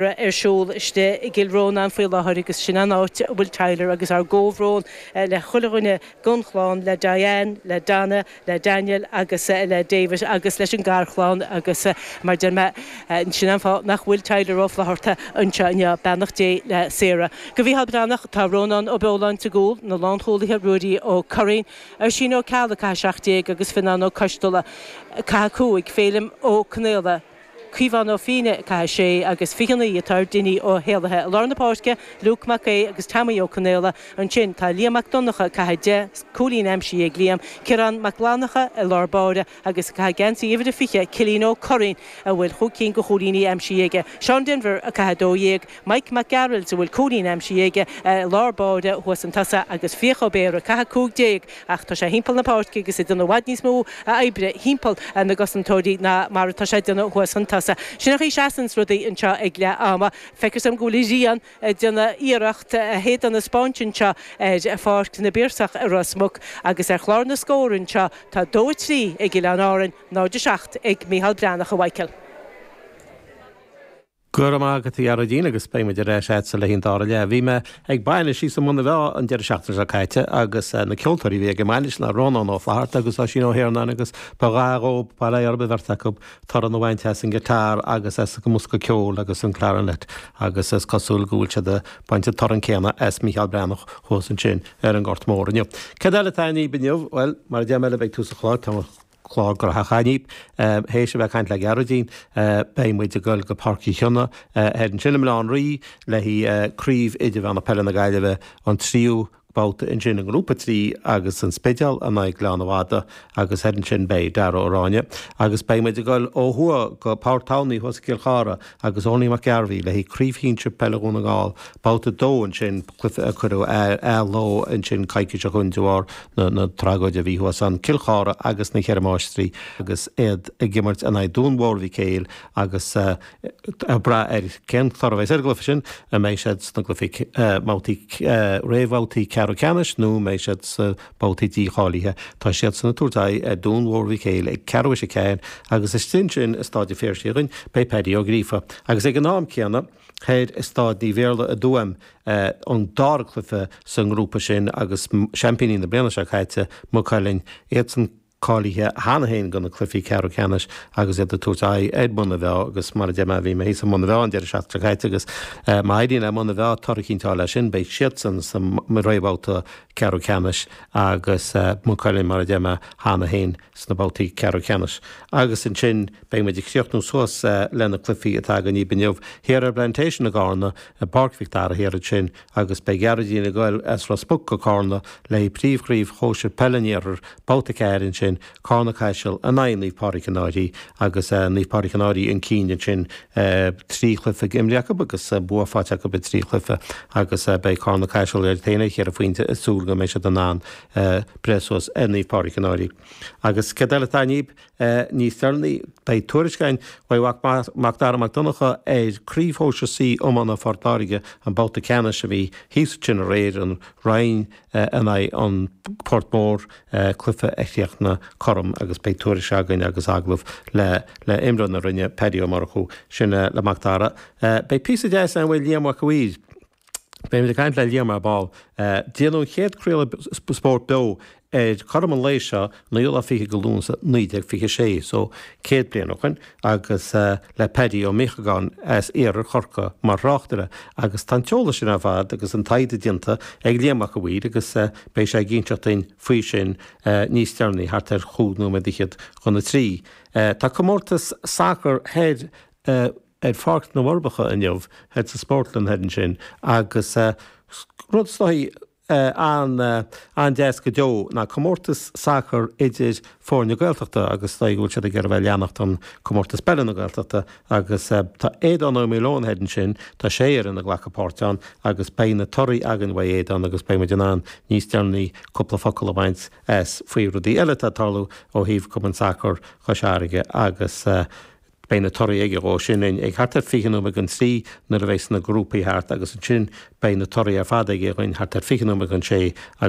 raibh ar siúl istigh i gCill Rónáin faoi láthair agus sin an áit a bhfuil Tyler agus ár gcomhbhrón le chuile dhuine den chlann, le Diane, le Donna, le Daniel agus le David agus leis an garchlann agus mar deir mé sin an fáth nach bhfuil Tyler Ó Flaithearta anseo inniu, beannacht Dé le Sarah. Do Mhícheál Breathnach, tá Rónán Ó Beoláin sa gcúl, na lánchúlaithe Ruairí Ó Curraoin, Oisín Ó Ceallaigh, ag caitheamh 17, agus Fionnán Ó Coisteala, ag caitheamh 5, Féilim Ó Conaola, Caomhán Ó Fiaine, ag caitheamh 6 agus 29 atá ar Dinny Ó hÉallaithe i lár na páirce, Luke Mac Aoidh agus Teaimí Ó Conghaile ansin, tá Liam Mac Donnacha, ag caitheamh 10, cúilín aimsithe ag Liam, Ciarán Mac Fhlannacha i lár báire agus ag caitheamh geansaí uimhir a 20, Cillian Ó Curraoin a bhfuil chúig cinn de chúilíní aimsithe aige, Seán Denvir, ag caitheamh 12, Mike Mac Gearailt, a bhfuil cúilín aimsithe aige i lár báire thuas chun tosaigh agus Fiach Ó Béarra, ag caitheamh 15 ach tá sé thimpeall na páirce agus ag déanamh i bhfad níos mó oibre thimpeall na gcosantóirí ná mar atá sé ag déanamh thuas chun tosaigh. Sin an chaoi a seasanns rudaí anseo ag leath ama. Feictear dom go bhfuil an ghrian ag déanamh iarracht a héadan a 'speáint anseo ar Pháirc na bPiarsach i Ros Muc agus ar chlár na scór anseo tá 2 3 ag Oileáin Árainn, 0 7 ag Micheál Breathnach a Mhicheáil. Go raibh maith agat, a Ghearóidín, agus beidh muid ar ais a'dsa le haghaidh an dara leath. Bhí mé ag bainis thíos i mBun na bhFeá an deireadh seachtaine seo caite agus na ceoltóirí a bhí ag an mbainis ná Rónán Ó Flatharta agus Oisín Ó hIarnáin agus ba ghá dhób, ba réidh orb an bheirt acu torann a bhaint as an guitar agus as an mbosca ceoil agus an clarinet agus is cosúil go bhfuil siad a' baint an torann céanna as Mícheál Breathnach thuas ansin ar an nGort Mór inniu. Cad eile atá againn daoibh inniu? Bhuel, mar a deir mé libh i dtús a' chlár, tá clár gnóthach againn daoibh. Théis a bheith ag caint le Gearóidín, beidh muid ag dul go Páirc Uí Chionnaith thoir ansin i mBleá an Rí le haghaidh Craobh Idirmheánach Peile na Gaillimhe, an tríú babhta ansin i nGrúpa 3 agus An Spidéal in aghaidh Ghleann na Madadh agus thoir ansin beidh Darragh Ó Ráinne agus beidh muid ag dul ó thuaidh go Páirc Thamhnaí thuas i gCill Chartha agus Eoiní Mac Gairbheith le haghaidh Craobh Shinsir Peile Dhún na nGall, Babhta 2 ansin, cluiche a cuireadh ar athló ansin coicís ó shin de bharr na tragóide a bhí thuas ann, Cill Chartha agus Na Cheithre Máistrí agus iad ag imirt in aghaidh Dún Mhór Mhic Éil agus ag brath ar cén toradh a bheidh ar an gcluiche sin, an mbeidh siad sna cluichí, mbabhtaí, réamhbhabhtaí ceathrú ceannais nó an mbeidh siad sa. babhtaí dícháilithe, tá siadsan ag tabhairt aghaidh ar Dún Mhór Mhic Éil ag ceathrú théis a ceathair agus istigh ansin i Staid a' Phiarsaigh againn beidh Paddy Ó Gríofa agus ag an am céanna thoir i Staid Naomh Iarlaith i dTuaim an dara cluiche sa ngrúpa sin agus seaimpíní na bliana seo caite, Maigh Cuilinn, iadsan. cáilithe cheana féin do na cluichí ceathrú ceannais agus iad ag tabhairt aghaidh ar Mhuine Mheá agus mar a deir mé, bhí mé thíos i Muine Mheá an deireadh seachtaine seo caite agus má éiríonn le Muine Mheá toradh a chinnteáil ansin, beidh siadsan sa réamhbhabhta ceathrú ceannais agus Maigh Cuilinn, mar a deir mé, cheana féin sna babhtaí ceathrú ceannais agus ansin beidh muid ag críochnú suas le na cluichí atá againn inniu, thiar ar an bPlantation i gCarna, i bPáirc Mhic Dara, thiar ansin. agus beidh Gearóidín ag goil as Ros Muc go Cárna le príomhchraobh shóisir peile an iarthair, babhta 4 ansin, Cárna Caiseal in aghaidh Naomh Pádraig an Fhairche agus Naomh Pádraig an Fhairche chun cinn ansin trí chluiche imrithe acu agus bua faighte acu i dtrí chluiche agus beidh Cárna Caiseal iad féin ar cheithre phointe ag súil go mbeidh siad in ann breith suas ar Naomh Pádraig an Fhairche agus céard eile atá inniu é níos deireanaí. Beidh tuairisc againn uaidh Mhac Macdara Mac Donncha ar chraobh shóisir C iomána Phort Láirge an babhta ceannais a bhí thíos ansin aréir, an Rinn in aghaidh an Port Mór, cluiche a chríochnaigh cothrom agus beidh tuairisc againn agus agallamh le le imreoir na Rinne, Paddy Ó Murchú. Sin le Macdara. Beidh píosa deas ann uaidh Liam Mhac a' Mhaoir. Beidh muid ag caint le Liam ar ball. Déanadh an chéad craoladh spóirt beo ar cothrom an lae seo an naoú lá fichead de Lúnasa 1926, so céad bliain ó shoin, agus le Paddy Ó Míochagáin as iarthar Chorcaí mar thráchtaire agus tá an t-eolas sin ar fad agus an taighde déanta ag Liam Mac a' Mhaoir agus beidh sé ag inseacht dúinn faoi sin níos deireanaí thart ar chúig nóiméad fhichead chun a trí. Tá comórtas sacair thoir ar Pháirc na bhForbacha inniu, thoir sa Spórtlann thoir ansin, agus rud is dóichí an-deas go deo ná comórtas sacair idir foirne Gaeltachta agus is dóigh go bhfuil siad ag iarraidh a bheith ag leanacht an Comórtas Peile na Gaeltachta agus tá Aodhán Ó Maoileoin thoir ansin, tá sé fhoireann ag glacadh páirt ann agus beidh na torthaí againn uaidh Aodhán agus beidh muid in ann níos deireanaí cúpla focal a bhaint as faoi rudaí eile atá ag tarlú ó thaobh Cumann Sacar Chois Fharraige agus Beidh na torthaí aige dhó sin ag thart ar fiche nóiméad don trí nuair a bheas na grúpaí thart agus ansin beidh na torthaí ar fad aige dhúinn thart ar fiche nóiméad don sé agus